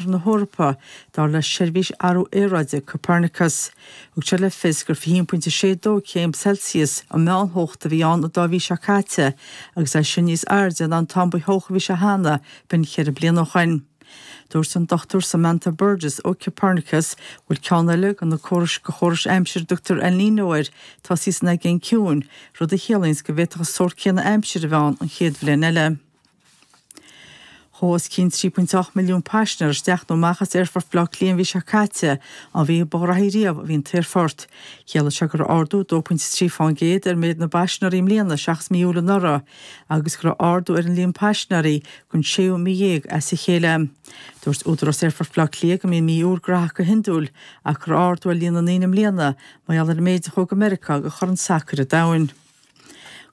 Lár na hEorpa, dar le Seirbhís Athrú Aeráide Copernicus. Thug siad le fios gur 21.62 céim Celsius an mheántheocht a bhí ann an dá mhí seo caite, agus é sin níos airde ná an t-am ba theocha a bhí sé cheana, b'in ceithre bliana ó shin. Dúirt an Dr Samantha Burgess ó Copernicus go bhfuil ceann eile de de chórais aimsire a dtugtar El Niño air tosaithe san Aigéan Ciúin, rud a chiallaíonns go bhféadfadh an sórt céanna aimsire a bheith ann an chéad bhliain eile. Chuaigh os cionn 3.8 milliún paisinéir isteach nó amach as Aerfort Bhaile Átha Cliath an mhí seo caite, an mhí ba ghraithí riamh a bhí an t-aerfort. Chiallaigh seo go raibh ardú 2.3 fán gcéad ar mhéid na bpaisinéirí i mbliana seachas mí Iúil anuraidh agus go raibh ardú ar an líon paisinéirí don séú mí dhéag as a chéile. Dúirt Údarás Aerfort Bhaile Átha Cliath go mbíonn mí Iúil graitheach go hiondúil ach go raibh ardú ar líon na ndaoine i mbliana mar gheall ar an méid a chuaigh go Meiriceá do Chorn Sacair an Domhain.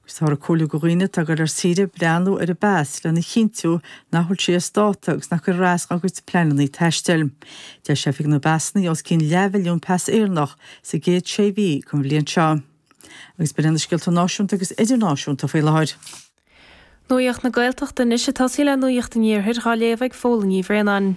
Agus táthar ag comhairliú do dhaoine atá ag dul ar saoire breathnú ar an bpas lena chinntiú nach bhfuil sé as dáta agus nach gcuirfear as dá gcuid pleananna taistil. D'eisigh Oifig na bPasanna os cionn leathmhilliún pas Éireannach sa gcéad sé mhí den bhliain seo. Agus b'in iad na scéalta náisiúnta agus idirnáisiúnta faoi láthair. Nuacht na Gaeltachta anois ag tosaí le nuacht an iarthair dhá léamh ag Fódhla Ní Bhraonáin.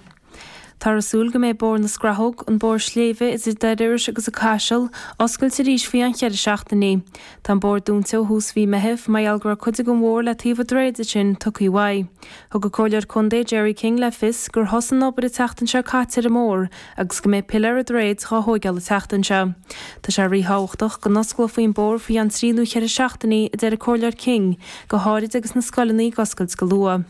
Táthar ag súil go mbeidh Bóthar na Scrathóg, an bóthar sléibhe idir Doire Iorrais agus an Caiseal, oscailte arís faoi cheann cheithre seachtainí. Tá an bóthar dúnta ó thús mhí Meithimh mar gheall go raibh cuid den bhóthar le taobh an droichid ansin tugtha uaidh. Thug an Comhairleoir Contae Gerry King le fios gur thosaigh an obair an tseachtain seo caite ar an mbóthar agus go mbeidh piléar an droichid dhá thóigeáil an tseachtain seo. Tá sé ríthábhachtach go n-osclófaí an bóthar faoi cheann trí nó cheithre seachtainí, a deir an Comhairleoir King, go háirid agus na scoileanna ag oscailt go luath.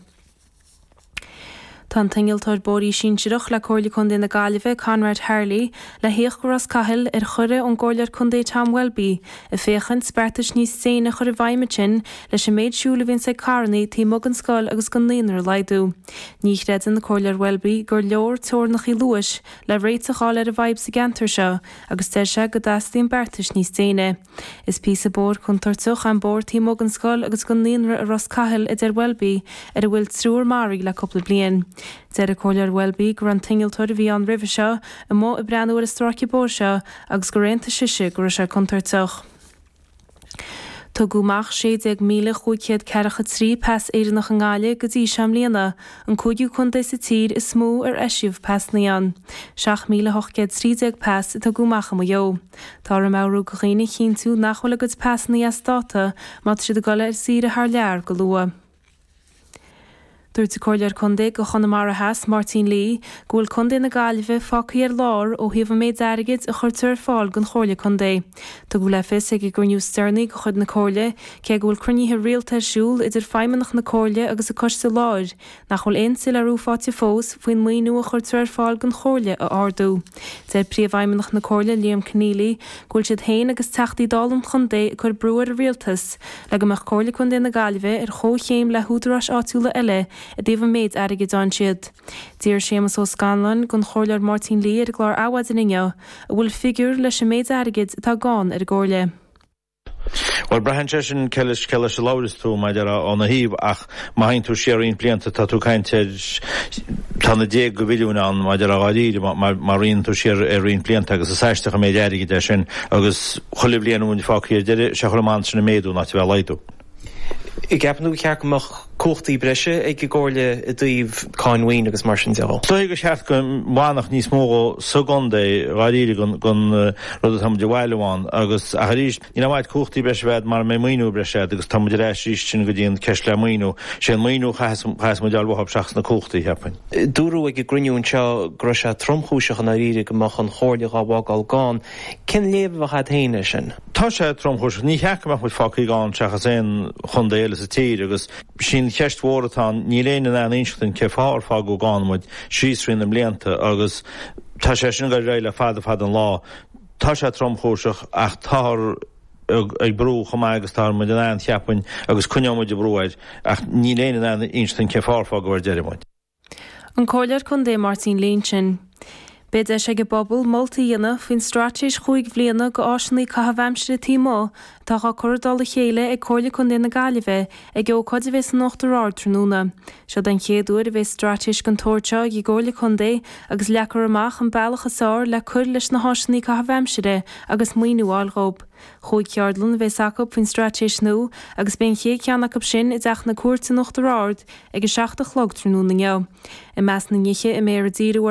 Tá an t-innealtóir bóithrí sinsearach le Comhairle Contae na Gaillimhe, Conrad Harley, le thíocht go Ros Cathail ar chuireadh ón gComhairleoir Contae Tom Welby ag féachaint beartais níos déine a chur i bhfeidhm ansin leis an méid siúil a bhíonns ag carranna taobh amuigh den scoil agus den naíonra a laghdú. Ní chreideann an Comhairleoir Welby gur leor teorainneacha luais le réiteach a fháil ar an bhfadhb sa gceantar seo agus deir sé go dteastaíonn beartais níos déine. Is píosa bóthair contúirteach é an bóthar taobh amuigh den scoil agus den naíonra i Ros Cathail, a deir Welby, ar a bhfuil triúr maraithe le cúpla bliain. Deir an Comhairleoir Welby go raibh an t-innealtóir a bhí ann roimhe seo amuigh ag breathnú ar an stráice bóthair seo agus gur aontaigh sise go raibh sé contúirteach. Tugadh amach 16,543 pas Éireannach i nGaillimh go dtí seo i mbliana, an cúigiú contae sa tír is mó ar eisíodh pasanna ann. 7,813 pas a tugadh amach i Maigh Eo. Táthar ag meabhrú do dhaoine a chinntiú nach bhfuil a gcuid pasanna as dáta má tá siad ag dul ar saoire thar lear go luath. Dúirt an Comhairleoir Contae do Chonamara Theas, Máirtín Lee, go bhfuil Contae na Gaillimhe fágthaí ar lár ó thaobh an méid airgid a chuirtear ar fáil don Chomhairle Contae. Tugadh le fios ag an gcruinniú is deireanaí de chuid na Comhairle, cé go bhfuil cruinnithe rialta ar siúl idir Feidhmeannach na Comhairle agus an Coiste Láir, nach bhfuil aon tsoiléiriú faighte fós faoin maoiniú a chuirtear ar fáil don Chomhairle a ardú. Deir Príomhfheidhmeannach na Comhairle, Liam Conneally, go bhfuil siad féin agus Teachtaí Dála an chontae ag cur brú ar an Rialtas le go mbeadh Comhairle Contae na Gaillimhe ar chomhchéim le húdaráis áitiúla eile i dtaobh an méid airgid a fhaigheann siad. D'iarr Séamus Ó Scanláin den Chomhairleoir Máirtín Lee ar an gclár Adhmhaidin inniu an bhfuil figiúr leis an méid airgid atá gann ar an gComhairle. Bhuel, braitheann sé sin cé leis, cé leis a labhaireas tú, mar a déarfá, óna thaobh, ach má théann tú siar roinnt blianta, tá tú ag caint ar, tá na déaga de mhilliúin ann, mar a déarfá, dháiríre, má, má rianann tú siar ar roinnt blianta, agus is aisteach an méid airgid é sin, agus chuile bhliain a mbíonn fágthaí ar deireadh, sé an chaoi a mbíonn sin ag méadú in áit a bheith ag laghdú. Ceapann tú gur cheart go mbeadh cumhachtaí breise ag an gComhairle i dtaobh cáin mhaoin agus mar sin de? Is dóigh gur cheart go bhfanfadh níos mó sa gcontae dháiríre den rud atá muid a bhailiú ann agus, ach arís, níl aon mhaith cumhachtaí breise a bheith agat mara mbeidh maoiniú breise agat agus tá muid ar ais arís ansin go dtí an ceist le maoiniú. Sé an maoiniú a chaitheas muid a fháil uathu seachas na cumhachtaí, cheapfainn. Dúradh ag an gcruinniú anseo go raibh sé tromchúiseach i ndáiríre go mbeadh an Chomhairle dhá bhfágáil gann. Cén léamh a bheadh agat féin air sin? Tá sé tromchúiseach. Níor cheart go mbeadh muid fágthaí gann seachas aon chontae eile sa tír agus sin an cheist mhór atá ann. Níl éinne in ann inseacht dúinn cén fáth ar fágadh gann muid síos thrí na blianta agus tá sé sin ag dul ar aghaidh le fada fada an lá. Tá sé tromchúiseach ach táthar ag brú chomh maith agus atá muid in ann, cheapfainn, agus coinneoidh muid ag brú air ach níl éinne in ann inseacht dúinn cén fáth ar fágadh ar deireadh muid. An Comhairleoir Contae Máirtín Lee ansin. Beidh deis ag an bpobal moltaí a dhéanamh faoin straitéis chúig bhliana do áiseanna caithimh aimsire taobh amuigh atá á cur i dtoll a chéile ag Comhairle Contae na Gaillimhe ag ócáid a bheidh san Uachtar Ard tráthnóna. Seo den chéad uair a bheidh straitéis den tsórt seo ag an gComhairle Contae agus leagfar amach an bealach is fhearr le cur leis na háiseanna caithimh aimsire agus maoiniú a fháil dhóib. Chúig cheardlann a bheas acu faoin straitéis nua agus beidh an chéad cheann acu sin i dTeach na Cúirte in Uachtar Ard ag a seacht a chlog tráthnóna inniu. I measc na nithe a mbeifear ag díriú orthu,